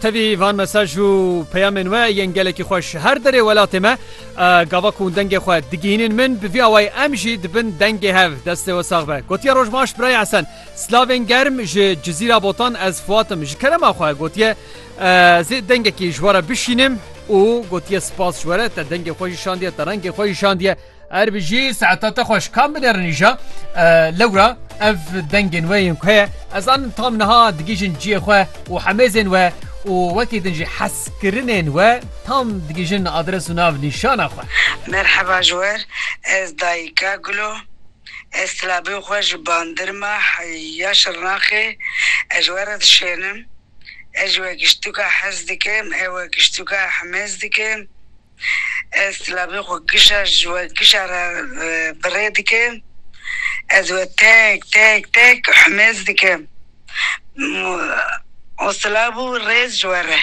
Tevî van mesaj û peyamên we yên gelekî xweş ji her derê welatê me gava ku hûn dengê xwe digihînin min bi vî awayî em jî dibin dengê hev. Destê we sax be. Gotiye roj baş birayê Esen. Silavên germ ji Cizîra Botan ez Fuat im. Ji kerema xwe gotiye ez ê dengekî ji we re bişînim û gotiye sipas ji we re te dengê xwe jî şandiye te rengê xwe jî şandiye. Eger bijî saeta te xweş kam binerînîja lewra ev dengên we yên ku heye ez zanim tam niha digihîjin ciyê xwe û hemêzên we û wekî din jî hezkirinên we tam digihîjin adres û nav nîşana xwe. Merheba ji wer ez dayika Gulo ez silabê xwe ji bandirma ya şirnaxê ez ji we re dişênim ez ji we giştûka hez dikim ew we giştûka hemêz dikim. Ez silavê xwe gişa ji we gişa re bi rê dikim. Ez we tek tek tek humêz dikim. Û silav û rêz ji we re.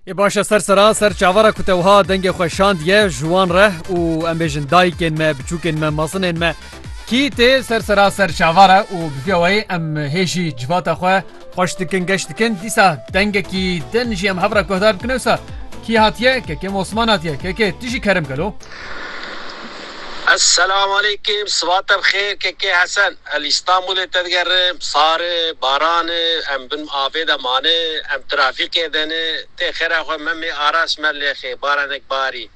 Ê baş e ser sera ser çavara ku te wiha dengê xwe şandiye ji wan re û em bêjin dayikên me, biçûkên me, mezinên me. Kî tê ser sera ser çavara û bi vî wayî em hê jî civata xwe Xweş dikin geş dikin dîsa dengekî din jî em hev re guhdar bikin ewsa kî hatiye kekê Osman hatiye kekê tu jî kerim gelo. Eselamaleykim sibate bi xêr kekê Hesen e li Îstanbulê te digerim sar e baran e em bin avê de mane em trafîkê de ne tê xêra xwe memê Aras Mellêxê baranek barî.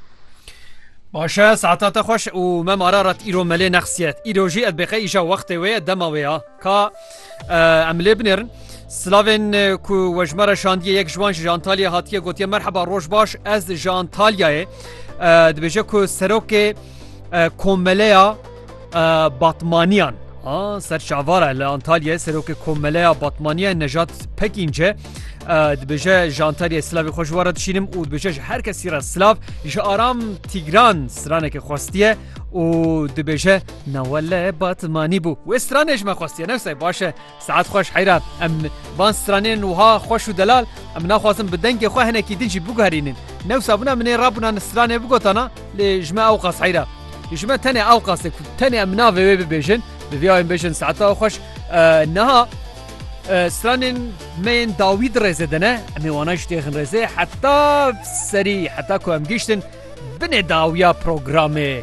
Baş e saeta te xweş û mem Ararat îro melê nexsiyet îro jî ez bêqe îja wextê wê ye dema wê ya ka Em lê binêrin Silavên e, ku wejmara şandiye yek ji wan ji Antalya hatiye gotiye merheba roj baş ez ji Antalyayê e, dibêje ku serokê e, komeleya Batmaniyan ser çavara li Antalyayê serokê komeleya Batmaniya Nejat Pekînce dibêje ji Antalyayê silavê xwe ji wara dişînim û dibêje ji her kesî re silav ji aram Tîgran stranekê xwestiye û dibêje Na wele batmanî bû. Wê stranê ji me xwestiye newsay baş e. Saet xweş heyra em van stranên wiha xweş û delal em naxwazin bi dengê xwe hinekî din jî biguherînin. Newsa bûna min ê rabûna ni stranê bigotana lê ji me ewqas heyra. Ji me tenê ewqas e ku tenê em navê wê bibêjin. Bi vî awên bêjin saeta xweş niha stranên me yên dawî di rêzê de ne em ê wana jî têxin rêzê heta serî heta ku em gihiştin binê dawiya programê.